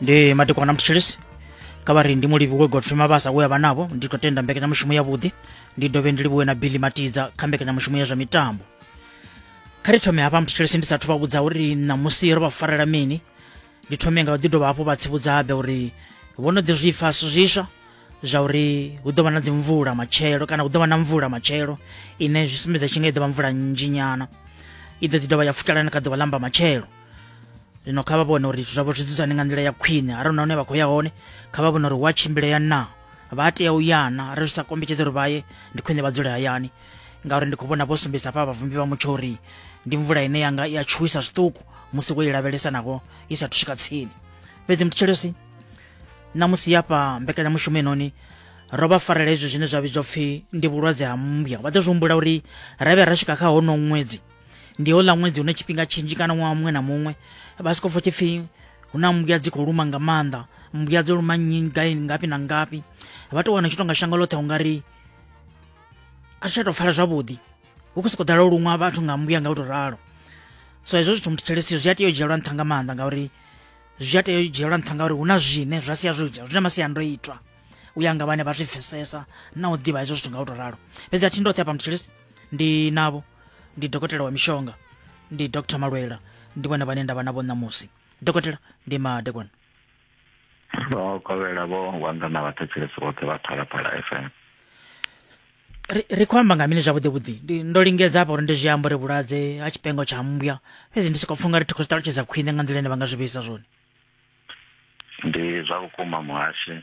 ndi madekwana mthilisi kha vha ri ndi mulivhi we godfrey mabasa we a vha navho ndi khou tenda mbekanyamushumo yavhuḓi ndi dovhe ndi livhuwe na billy matidza kha mbekanyamushumo ya zwa mitambo kha ri thome hafha mthilisi ndi sathu vha vhudza uri ṋamusi ro vha farela mini ndi thome nga u ḓi dovha hafhu vha tsivhudza habe uri vho no ḓi zwifa zwiswa zwa uri hu ḓo vha na dzimvula matshelo kana hu ḓo vha na mvula matshelo ine zwi sumbedza tshi nga i ḓo vha mvula nnzhinyana i ḓo ḓi dovha ya futalana kha ḓuvha ḽa mba matshelo zwino kha vha vhone uri zwithu zwavho zwi dzudzane nga nḓila ya khwine arali hune vha khou ya hone kha vha vhone uri hu a tshimbilea na vha tea u ya na arali zwi sa kombetshedza uri vha ye ndi khwine vha dzule hayani ngauri ndi khou vhona vho sumbedzisa hafha vhavumbi vha mutsho uri ndi mvula ine yanga i a tshuwisa zwiṱuku musi wo i lavhelesa naho i sathu swika tsini fhedzi mutshitsheleosi ṋamusi yafha mbekanyamushumo inoni ro vha farela izwi zwine zwa vhidzwa pfhi ndi vhulwadze ha mmbya vha ḓo zwi humbula uri ra vhuya ra swika kha honoho ṅwedzi ndi houḽa ṅwedzi hune tshifhinga tshinzhi kana ṅwaha muṅwe na muṅwe vha soko pfha tshipfi hu na mbuya dzi khou luma nga maanḓa mbuya dzo luma nnyi gai ngafhi na ngafhi vha tou wana tshi tonga shango ḽoṱhe ungari a tshi tsha tou pfala zwavhuḓi hu khou sokou ḓala u luṅwa vhathu nga mbuya nga u tou ralo so hezwo zwithu muthu tshelesiyo zwi a tea u dzhielwa nṱha nga maanḓa ngauri zwi a tea u dzhielwa nṱha ngauri hu na zwine zwa sia zwo ita zwi na masiandoitwa u ya nga vhane vha zwi pfesesa na u ḓivha hezwo zwithu nga u to ralo fhedzi a thi ndoṱhe hapa mutshilisi ndi navho ndi dokotela wa mishonga ndi dr malwela ndi vhone vhane ndavha navho ṋamusi dokotela ndi madekwana o kovhela vho wanga na vhathetshelesi vhoṱhe vha phalaphala fm ri khou amba nga mini zwavhuḓi vhuḓi ndo lingedza hafha uri ndi zwi amba uri vhulwadze ha tshipengo tsha mmbwa fhedzi ndi soko pfunga ri thi khou zwi ṱalutshedza khwine nga nḓila ine vha nga zwi vheisa zwone Ndi zwa vhukuma muhashe,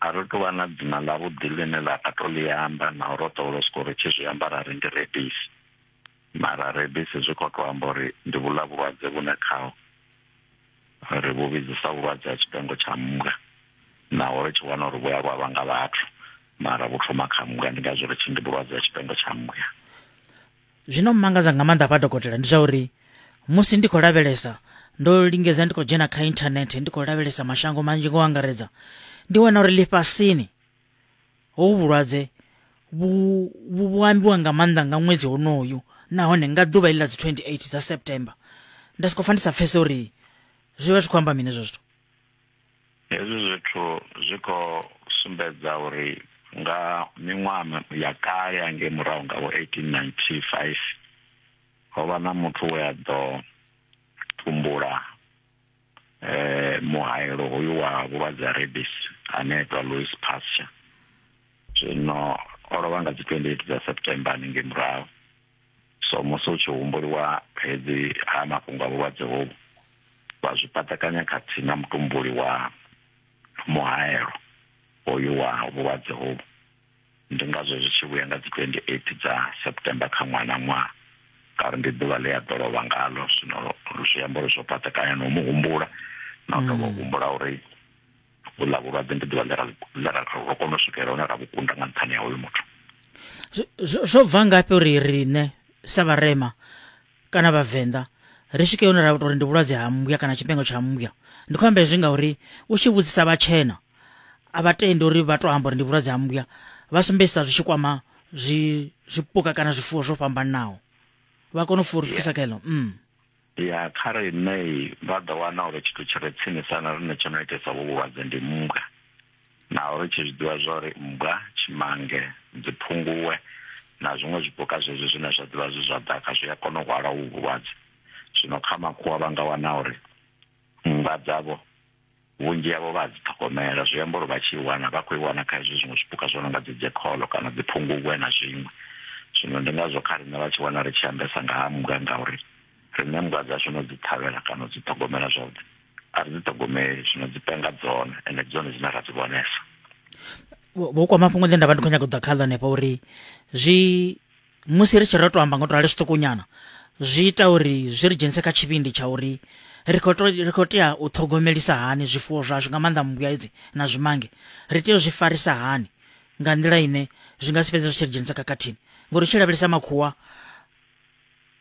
a ri tou vha na dzina ḽa vhuḓi ḽine ḽa nga to ḽi amba naho ro ḓowela u sokou ri tshi zwi amba rari ndi rebisi mara rebisi zwi kho to amba uri ndi vhuḽa vhulwadze vhune khaho ri vhu vhidzisa vhulwadze ha tshipengo tsha mmbwa naho ri tshi wana uri vhuya lwa vhanga vhathu mara vhu thoma kha mmbwa ndi ngazwo ri tshi ndi vhulwadze ha tshipengo tsha mmbwa. Zwino mmangadza nga maanḓa hafha dokotela ndi zwa uri musi ndi khou lavhelesa ndo lingedza ndi khou dzhena kha inthanethe ndi khou lavhelesa mashango manzhi ngo angaredza ndi wana uri ḽifhasini hovhu vhulwadze vhu ambiwa nga maanḓa nga ṅwedzi honoyu nahone nga ḓuvha iḽi ḽa dzi 28 dza september nda sokou pfa ndi sa pfese uri zwi vha zwi khou amba mini hezwo zwithu Hezwi zwithu zwi khou sumbedza uri nga miṅwaha ya kale hangei murahu nga vho 1895 ho vha na muthu we a ḓo tumbula eh muhaelo hoyu wa vhulwadze ha rabies ane a itwa Louis Pasteur zwino o lovha nga dzi 28 dza September haningei murahu So musi hu tshi humbulwa fhedzi ha mafhungo a vhulwadze hovhu, vha zwi paṱakanya khathihi na mutumbuli wa muhaelo hoyu wa vhulwadze hovhu. Ndi ngazwo zwi tshi vhuya nga dzi 28 dza September kha ṅwaha na ṅwaha ngauri ndi ḓuvha ḽe a ḓo lovha ngaḽo. Zwino zwi amba uri zwo paṱakanya na u mu humbula na u dovha u humbula uri. vhuḽa vhulwadze ndi ḓuvha ḽe ra ḽe ra ro kona u swikelela hune ra vhukunda nga nṱhani ha uyu muthu zwo bva ngafhi uri riṋe sa vharema kana vhavenḓa ri swike hune ra tou ri ndi vhulwadze ha mmbwa kana tshifhinga tsha mmbwa ndi khou amba hezwi ngauri u tshi vhudzisa vhatshena a vha tendi uri vha tou amba uri ndi vhulwadze ha mmbwa vha sumbedzisa zwi tshi kwama zwi zwipuka kana zwifuwo zwo fhambananaho vha kona u furisisa kha eḽo mm. Ya, kha riṋe vha ḓo wana uri tshithu tshi re tsinisa na riṋe tsho no itesa vhu vhulwadze ndi mmbwa, naho ri tshi zwi ḓivha zwa uri mmbwa, tshimange, dziphunguwe na zwiṅwe zwipuka zwezwi zwine zwa ḓivha zwi zwa ḓaka zwi a kona u hwala uvhu vhulwadze. Zwino kha makhuwa vha nga wana uri mmbwa dzavho. Vhunzhi havho vha a dzi ṱhogomela, zwi amba uri vha tshi i wana vha khou i wana kha hezwi zwiṅwe zwipuka zwo no nga dzi jekholo kana dzi phungubwe na zwiṅwe. Zwino ndi ngazwo kha riṋe vha tshi wana ri tshi ambesa nga ha mmbwa ngauri riṋe mmbwa dzashu no dzi ṱhavhela kana u dzi ṱhogomela zwavhuḓi a ri dzi ṱhogomeli, zwino dzi penga dzone ende ndi dzone dzine ra dzi vhonesa. Vho kwa mafhungo ḽe nda vha ndi khou nyaga u ḓa khaḽo hanefha uri zwi musi ri tshi ro to amba ngo to rali zwiṱukunyana zwi ita uri zwi ri dzhenise kha tshivhindi tsha uri ri khou ri khou tea u ṱhogomelisa hani zwifuwo zwashu nga maanḓa mmbuyedzi na zwimange ri tea u zwi farisa hani nga nḓila ine zwi nga si fhedze zwi tshi ri dzhenisa khakhathini ngori u tshi lavhelesa makhuwa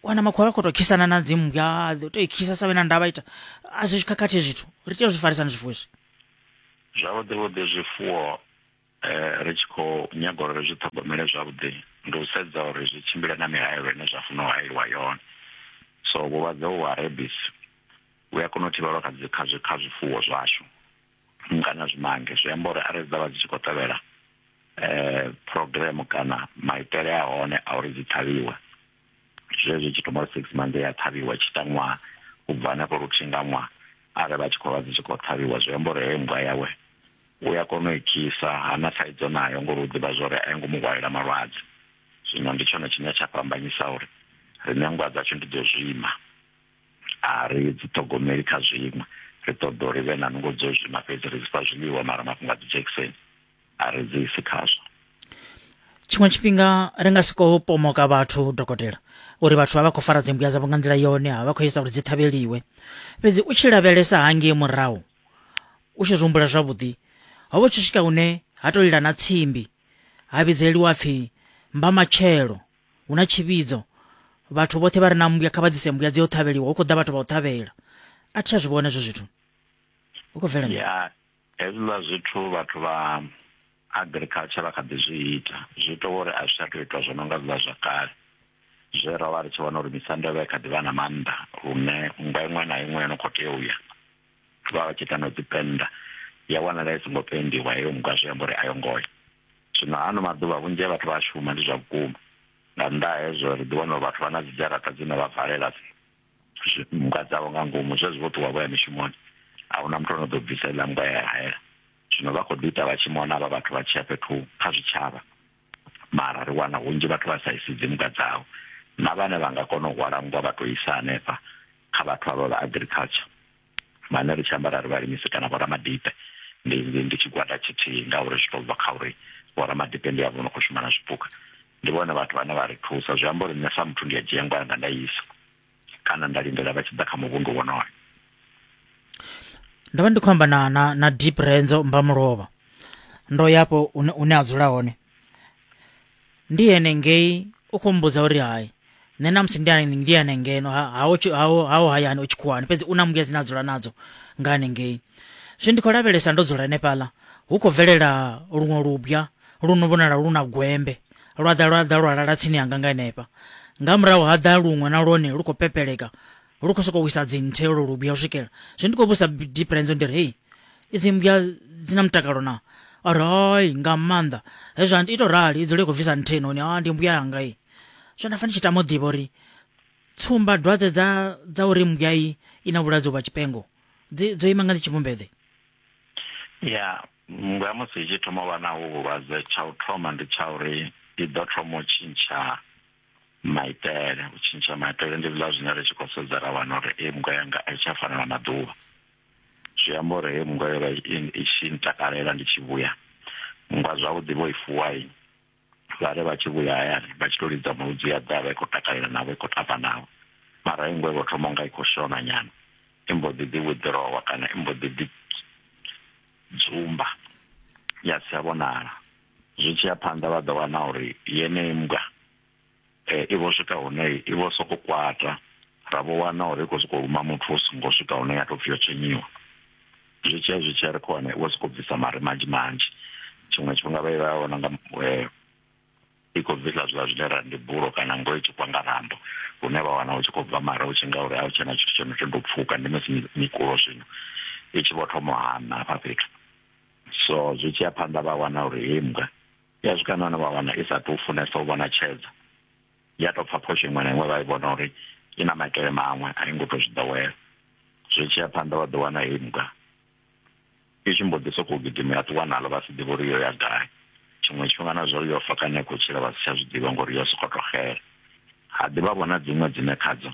wana makhuwa vha khou tou khisana na dzimmbwa u tou i khisa sa vhe na ndavha ita a zwi khakhathi zwithu ri tea u zwi farisani zwifuwo izwi zwavhuḓi vhuḓi zwifuwo ri tshi khou nyaga uri ri zwi ṱhogomele zwavhuḓi ndi u sedza uri zwi tshimbile na mihaelo ine zwa funa u hayeliwa yone so vhulwadze uvhu ha rebis vhu a kona u thivhelwa kha dzi kha zwi kha zwifuwo zwashu kana zwimange zwi amba uri arali dza vha dzi tshi khou tevhela eh program kana maitele a hone a uri dzi ṱhavhiwe zwezwi tshi thoma six months ya ṱhavhiwa tshi tangwa u bva hanefho luthihi nga ṅwaha arali vha tshi khou vha dzi tshi khou ṱhavhiwa zwi amba uri heyo nngwa yawe u ya kona u i kisa, ha na thaidzo nayo ngori u ḓivha zwa uri a yo ngo mu hwalela malwadze. Zwino ndi tshone tshine tsha fhambanyisa uri riṋe nndwa dzashu ndi dzo zwima, a ri dzi ṱhogomeli kha zwiṅwe, ri ṱoḓa uri vhe na nungo dzo zwima fhedzi, ri dzi fha zwiḽiwa mara mafhungo a dzi dzhekiseni a ri dzi isi khazwo. Tshiṅwe tshifhinga ri nga si khou pomoka vhathu dokotela uri vhathu vha vha khou fara dzimbuya dzavho nga nḓila yone, ha vha khou ita uri dzi ṱhavheliwe. Fhedzi u tshi lavhelesa hangei murahu, U tshi zwi humbula zwavhuḓi, ho vha tshi swika hune ha tou lila na tsimbi, ha vhidzeliwa pfi mbamatshelo, hu na tshivhidzo. Vhathu vhoṱhe vha re na mmbwa kha vha ḓise mmbwa dzi yo ṱhavheliwa, hu khou ḓa vhathu vha u ṱhavhela. A thi tsha zwi vhona hezwo zwithu. Hu khou bvela ya hezwiḽa zwithu vhathu vha agriculture vha kha ḓi zwi ita zwi ita uri a zwi tsha tou itwa zwo no nga zwiḽa zwa kale zwe ra vha ri tshi vhona uri misanda yo vha i kha ḓi vha na maanḓa lune nngwa iṅwe na iṅwe yo no khou tea u ya vha vha tshi ita na dzi pennda ya wanala i songo pendiwa heyo nngwa zwi amba uri a yo ngo ya zwino ano maḓuvha vhunzhi ha vhathu vha a shuma ndi zwa vhukuma nga nnḓa ha hezwo ri ḓi wana uri vhathu vha na dzi dzharaṱa dzine vha valela nngwa dzavho nga ngomu zwezwi vho ṱuwa vho ya mishumoni a huna muthu ono ḓo bvisa iḽa nngwa ya hayela zwino vha khou ḓi ita vha tshi mona vha vhathu vha tshi ya fhethu kha zwitshavha mara ri wana hunzhi vhathu vha sa isi dzi nngwa dzavho na vhane vha nga kona u hwala nngwa vha to isa hanefha kha vhathu avha vha agriculture vhane ri tshi amba ra ri vhalimisi kana vhoramadipe ndi ndi tshigwada tshithihi ngauri zwi to bva kha uri vhoramadipe ndi avho no khou shuma na zwipuka ndi vhone vhathu vhane vha ri thusa zwi amba uri nṋe sa muthu ndi a dzhia ngwa yanga nda isa kana nda lindela vha tshi ḓa kha muvhundu wonoyo ndo vha ndi khou amba na na na deep renzo mbamulovha ndo yapo une a dzula hone ndi ene ngei u khou mbudza uri hai nṋe namusi ndi ane- ndi ane ngeno ha- haho tshi- haho haho hayani o tshikhuwani fhedzi u na mbuya dzine a dzula nadzo nga hanengei zwi ndi khou lavhelesa ndo dzula henefhaḽa hu khou bvelela luṅwe lubya lu no vhonala lu na gwembe lwa ḓa lwa ḓa lwa lala tsini yanga nga henefha nga murahu ha ḓa luṅwe na lwone lu khou pepeleka lu khou sokou wisa dzinthe lwo lubya u swikela zwe ndi khou vhusa diferenzo ndi ri hei idzi mmbya dzi na mutakalo na a ri hai nga maanḓa hezwi a ito rali i dzule i khou bvisa nthe noni a ndi mmbya yanga i zwe nda fa ndi tshi tama u ḓivha uri tsumba dwadze dza dza uri mmbya i i na vhulwadze vha tshipengo dzi dzo ima nga ndi tshivhumbede ya mmbwa musi i tshi thoma u vha na hu vhulwadze tsha u thoma ndi tsha uri i ḓo thoma u tshintsha maitele u tshintsha maitele ndi zwiḽa zwine ri tshi khou sedza ra wana uri hei mungwa yanga a i tsha fana na maḓuvha zwi amba uri hei mungwa yo vha i tshi ntakalela ndi tshi vhuya mungwa zwavhuḓi vho i fuwai vha ri vha tshi vhuya hayani vha tshi to lidza muludzi ya ḓa vha i khou takalela navho i khou tamba navho mara hei ngwe vho thoma unga i khou shona nyana i mbo ḓi ḓi withdrawer kana i mbo ḓi ḓi dzumba ya si tsha vhonala zwi tshi ya phanḓa vha ḓo wana uri yeneyi mbwa eh, i vho swika hune i vho soko kwata ra vho wana uri i khou sokou luma muthu u songo swika hune ya tou pfhi yo tshenyiwa zwi tshi ya zwi tshi ya ri khou wana i vho sokou bvisa mare manzhi manzhi tshiṅwe tshifhinga vha i vha vhona nga eh, i khou bvisa zwiḽa zwine ra ndi bulo kana ngo i tshi kwa nga rambo hune vha wana u tshi khou bva mara u tshi nga uri a u tshena tshithu tsho no tsho ndo pfuka ndi musi mikulo zwino i tshi vho thoma u hana hafha fhethu so zwi tshi ya phanḓa vha wana uri hei mbwa ya swika nahone vha wana i sa tou funesa u vhona tshedza ya tou pfha phosho iṅwe na iṅwe vha i vhona uri i na maitele maṅwe a i ngo tou zwi ḓowela zwi tshi ya phanḓa vha ḓo wana hei mbwa i tshi mbo ḓi sokou gidima ya ṱuwa naḽo vha si ḓivhe uri yo ya gai tshiṅwe tshifhinga na zwa uri yo fa kana i khou tshila vha si tsha zwi ḓivha ngori yo sokou tou xela ha ḓivha vhona dziṅwe dzine khadzo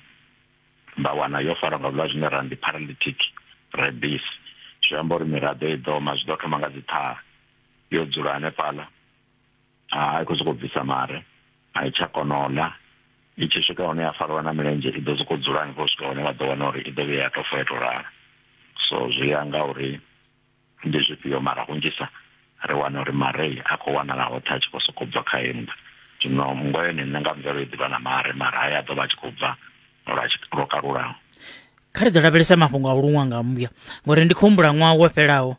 nda wana yo farwa nga vhulwadze zwine ra ndi paralytic rabies zwi amba uri miraḓo i ḓoma zwi ḓo thoma nga dzi ṱhaha yo dzula hanefhaḽa a i khou sokou bvisa mare a i tsha kona u ḽa i tshi swika hone ya fariwa na milenzhe i ḓo sokou dzula hanefho u swika hone vha ḓo wana uri i ḓo vhuya ya tou fa ya tou lala so zwi ya nga uri Ndi zwifhio? Mara hunzhisa ri wana uri marei a khou wanala hoṱhe a tshi khou sokou bva kha hennḓa. Zwino mmbwa yone nṋe nga mvelo i ḓivha na mare, mara haya a ḓo vha a tshi khou bva lwa lwo kalulaho. Kha ri ḓo lavhelesa mafhungo a u luṅwa nga mmbwa, ngori ndi khou humbula ṅwaha wo fhelaho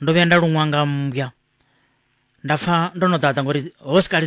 ndo vhuya nda luṅwa nga mmbwa nda pfa ndo no ḓaḓa ngori ho si kale